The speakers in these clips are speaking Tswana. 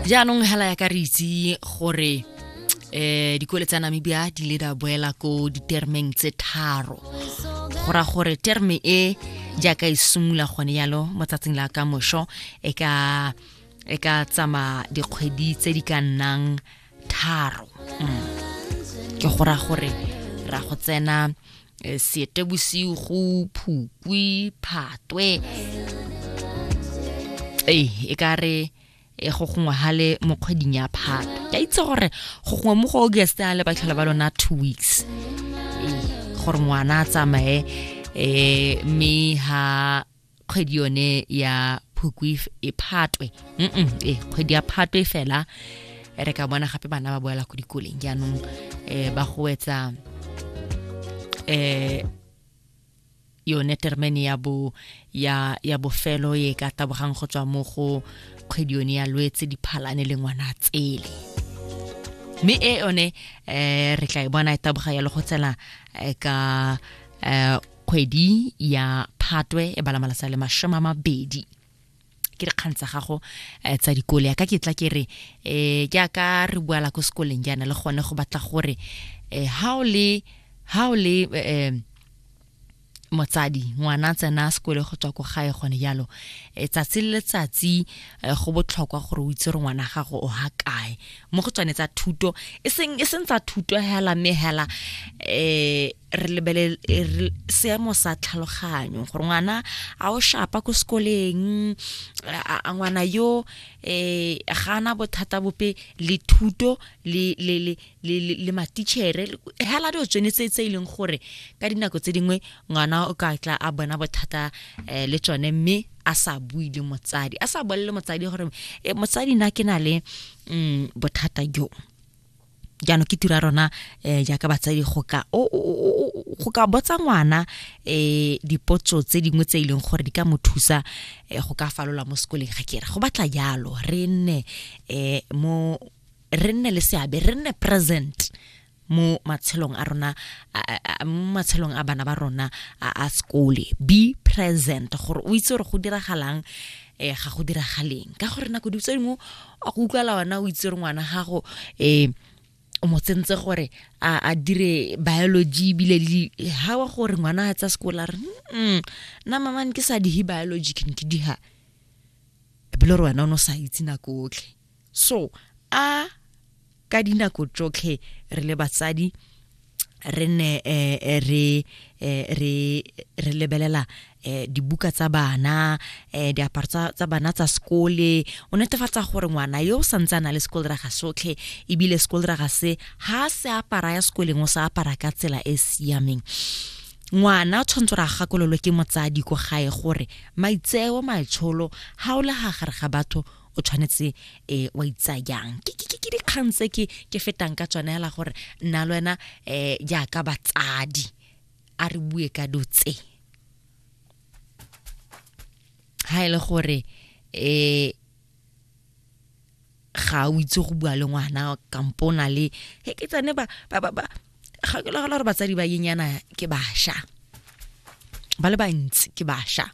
jaanong hela ya ka re itse gore eh dikole tsa Namibia di le da boela ko ditermeng tse tharo go ra gore terme e jaaka e simula gone yalo mo tsatsing la ka mosho e ka e ka tsama dikgwedi tse di ka nnang tharo mm. ke go ra gore ra go tsena eh, sete bosigo phukwi phatwe ee e ka re e go gongwe ga le mo kgweding ya phato ke itse gore go gongwe mo go august a le batlhola ba lona two weeks ee gore ngwana a tsamaye um mme ha kgwedi yone ya phukwi e phatwe e kgwedi ya phatwe fela re ka bona gape bana ba boela ko dikoleng jaanong um ba goetsa um yone termen ya bo ya ya bofelo e ka tabogang go tswa mo go kgwedi yone ya lwetse diphalane le ngwana tsele mme e yone um re tla e bona e taboga ya le go tsena ka um kgwedi ya phatwe e bala malasa le masome a mabedi ke dikgang tsa gago eh, tsa dikole ya ka ke tla ke re um ke aka re boala ko sekoleng jaana le gone go batla gore um ha o le ha o le um motsadi ngwana a tsena sekole go tswa ko gae gone jalo e tsatsi le letsatsi eh, go botlhokwa gore o itse gore ngwana gago o ha kae mo go tswane tsa thuto e seng e seng tsa thuto hela mme hela um re lebelele e seemo sa tlhaloganyo gore ngwana a o shapa ko sekoleng a ngwana yo eh ga ana bothata bope le thuto le le le le le matitšhere hela dio tsone tse tse ileng e gore ka dinako tse dingwe ngwana o ka tla a bona bothata eh, le tsone mme a sa bui le motsadi a sa bolele motsadi gore eh, motsadi na ke na le mm, bothata jo jaanong ke tira rona um jaaka batsadi go ka go ka botsa ngwana um dipotso tse dingwe tse e leng gore di ka mo thusa um go ka falola mo sekoleng ga kere go batla jalo re nne um mo re nne le seabe re nne present mo matshelong a rona mo matshelong a bana ba rona a sekole be present gore o itse gore go diragalang um ga go diragaleng ka gore nako ditso dingwe a go utlwala ona o itse re ngwana gago um o mo tsentse gore a dire biology ebile le ha wa gore ngwana a tsa sekola re nna mamane ke sa dihe biology ke ne ke diha ebile re wena o ne o sa itse nako otlhe so a ka dinako tsotlhe re le batsadi re ne eh, eh, re eh, re re lebelela dibuka tsa bana diaparo tsa bana tsa sekole o netefatsa gore ngwana yo o santse a na le sekole raga sotlhe ebile sekole raga se ha se apara ya sekoleng o sa apara ka tsela e e siameng ngwana o tshwanetse ra gakololo ke motsadi ko gae gore maitseo maitsholo ga o le ga gare ga batho o tshwanetse um wa itsayang ke dikgang tse ke fetang ka tsone hela gore nna le wena um jaaka batsadi a re bue ka do tse ha e le gore um ga o itse go bua le ngwana kampo o na le ke tsane ba ga ke lagala gore batsadi ba yenyana ke basha ba le bantsi ke basha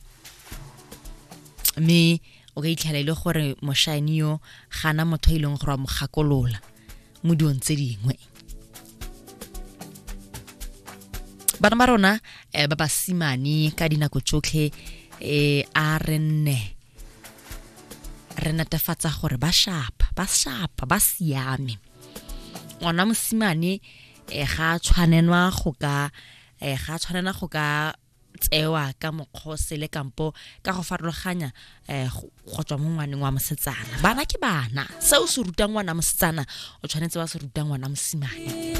mme o ka itlhela e le gore moshane yo gana motho e leng gore wa mo gakolola mo dilong tse dingwe bana ba rona eh, ba basimane ka dinako tsotlhe eh, a re nne re netefatsa gore ba shapa ba shapa ba siame ngwana mosimane um ga a tshwanelwa go ka um ga a tshwanela go ka tsewa ka mokgose le kampo ka go farologanya um go tswa mo ngwaneng wa mosetsana bana ke bana se o se rutang ngwana mosetsana o tshwanetse wa se rutang ngwana mosimane